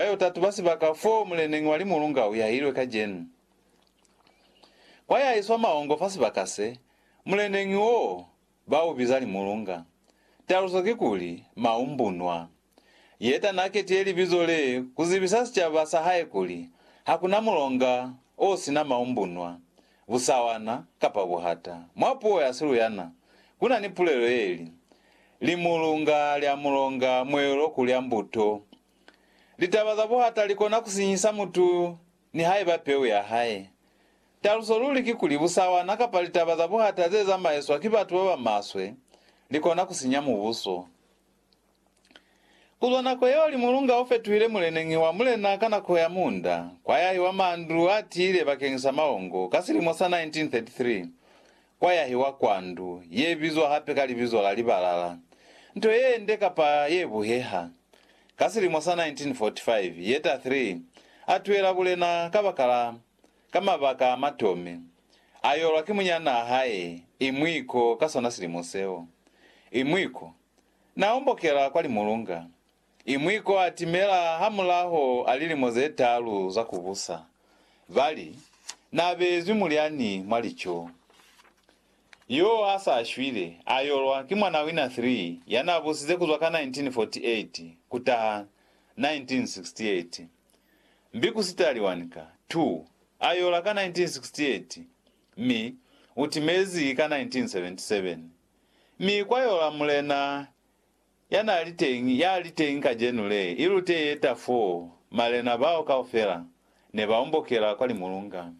Ba yo tatuba sibaka foo muleneñi wa limulunga u yahilwe kacenu. Kwa ya iswa mahongo fa sibaka se, muleneñi wo ba u biza limulunga. Taluso ki kuli, maumbunwa. Yeta na ketiye libizo le ku zibisa sicaba sa hae kuli, Ha ku na mulonga o si na maumbunwa, busawana, kapa buhata. Mwa puo ya Siluyana, ku na ni pulelo ye li, Limulunga lya mulonga mwelo ku lya mbuto Litaba za buhata li kona ku sinyisa mutu nihaiba peu ya hae. Taluso luli kikuli, busawana kapa litaba za buhata ze zamaiswa ki batu ba ba maswe li kona ku sinya mubuso. Ku zwa nako yeo limulunga o fetuhile muleneñi wa mulena ka nako ya muunda kwa yahi wa mandu a tiile bakeñisa maongo ka silimo sa 1933, kwa yahiwa kwa ndu ye bizwa hape ka libizo la Libalala, nto ye nde kapa ye buheha. Ka silimo sa 1945, Yetta Three a tuela bulena kabakala ka mabaka a matomi, a yolwa ki munyanaa hae Imwiko ka sona silimo seo. Imwiko na ombokela kwa limulunga, I mwi ko a timela hamulaho a lilimo ze talu za ku busa, ba li, Na beezwi mulyani mwa lico. Yo a sa shwile, a yolwa ki mwana wina 3 ya na busize ku zwa ka 1948 ku taha 1968. Mbi ku sitali wani ka, 2, a yola ka 1968, mi u timezi ka 1977. Mi kwa yola mulena Ya n'a li teñi, ya li teñi kacenu le, i lute ye ta foo, malena bao kaufela ne ba ombokela kwa limulunga.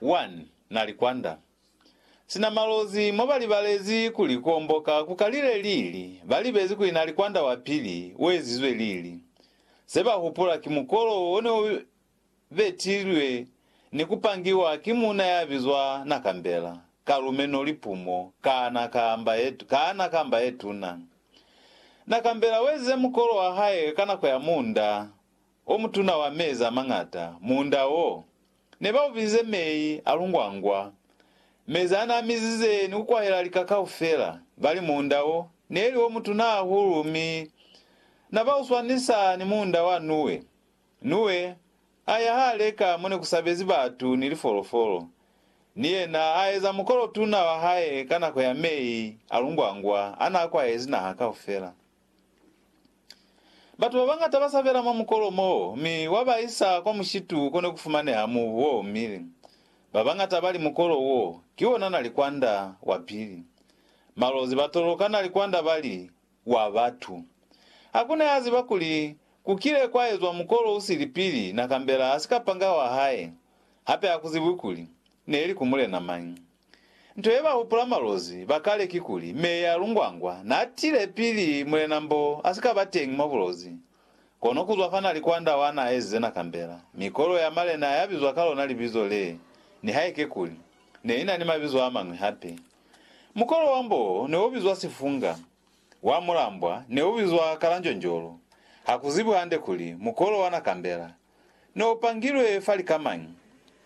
Wan, na li kwanda. Sina malozi, mo ba libalezi kuli ku omboka ku kalile lili, ba libezi kuli na li kwanda wa pili, u ezizwe lili. Se ba hupula ki mukolo wo ne u betilwe ni ku pangiwa ki muuna ya bizwa Nakambela, ka lumeno lipumo, kaana kamba ye, kaana kamba ye tuna. Nakambela wezize mukolo wa hae ka nako ya muunda o mutuna wa mezi a mañata. Muunda wo, ne ba u bizize mei a lungwangwa, mezi a n'a mizize ni ku kwahela lika kaufela. Ba li muunda wo, ne li o mutuna hahulu mi na ba u swanisa ni muunda wa Nuwe. Nuwe a ya hale ka mo ne ku sabezi batu ni lifolofolo, ni yena a eza mukolo tuna wa hae ka nako ya mei a lungwangwa a n'a kwahezi naha kaufela. Batu ba bañata ba sabela mwa mukolo m'o, mi wa ba isa kwa mushitu ko ne ku fumaneha mubu o omile. Ba bañata ba li mukolo wo ki wona nalikwanda wa pili. Malozi ba toloka nalikwanda ba li, wa batu. Hakuna ya ziba kuli ku kile kwa ezwa mukolo u sili pili na kambela ha sika panga wa hae, hape ha ku zibwi kuli ne li ku mulena mañi. Nto ye ba hupula malozi ba kale kikuli Meya Lungwangwa na tile pili Mulena Mbo a si ka ba teñi mwa bulozi. Kono kuzwa fa na li kwanda wa na ezize na kambela mikolo ya malena ya bizwa ka lona libizo le, nihaike kuli ne i na ni mabizo a mañwi hape. Mukolo wa mbo ne u bizwa Sifunga, wa mulambwa ne u bizwa Kalanjonjolo. Ha ku zibwi hande kuli mukolo wa Nakambela ne u pangilwe fa lika mañi.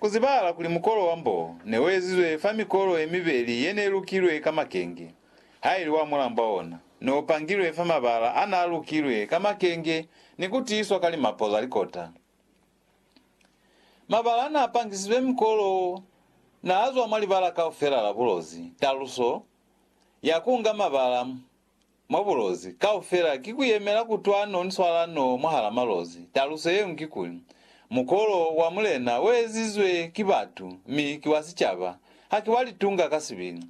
Ku zibahala kuli mukolo wa mbo ne u ezizwe fa mikolo ye mibeli ye ne lukilwe ka makenge, ha ili wa mulambwa ona ne u pangilwe fa mabala a n'a lukilwe ka makenge ni ku tiiswa ka limapo za likota. Mabala n'a pangisizwe mikolo wo n'a zwa mwa libala kaufela la bulozi. Taluso ya ku nga mabala mwa bulozi kaufela ki ku yemela kutwano ni swalano mwahal'a malozi. Taluso ye ñwi ki kuli, mukolo wa Mulena u ezizwe ki batu mi ki wa sicaba, haki wa litunga ka sibili.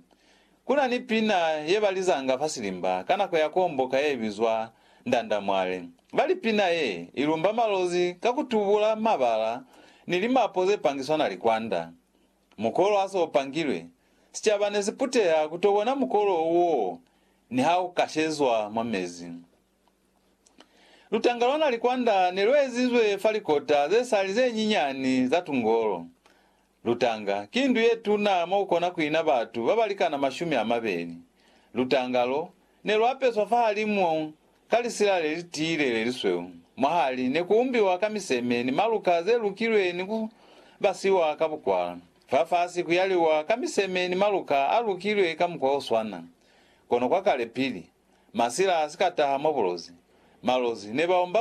Ku na ni pina ye ba lizanga fa silimba ka nako ya kuomboka ye bizwa Ndandamwale. Ba li pina ye i lumba malozi ka ku tubula mabala ni limapo ze pangiswa na likwanda. Mukolo ha se u pangilwe, sicaba ne si puteha ku to bona mukolo wo niha u kashezwa mwa mezi. Lutanga lwa nalikwanda ne lu ezizwe fa likota ze sali ze nyinyani za tungolo. Lutanga ki ndu ye tuna mo ku kona ku ina batu ba ba likana mashumi a mabeli. Lutanga lo ne lu apeswa fahalimu ka lisila le li tiile le lisweu. Mwahali ne ku umbiwa ka miseme ni maluka ze lukilwe ni ku basiwa ka bukwala. Fafasi ku yaliwa ka miseme ni maluka a lukilwe ka mukwa o swana. Kono kwa kale pili masila a si ka taha mwa bulozi, malozi ne ba omba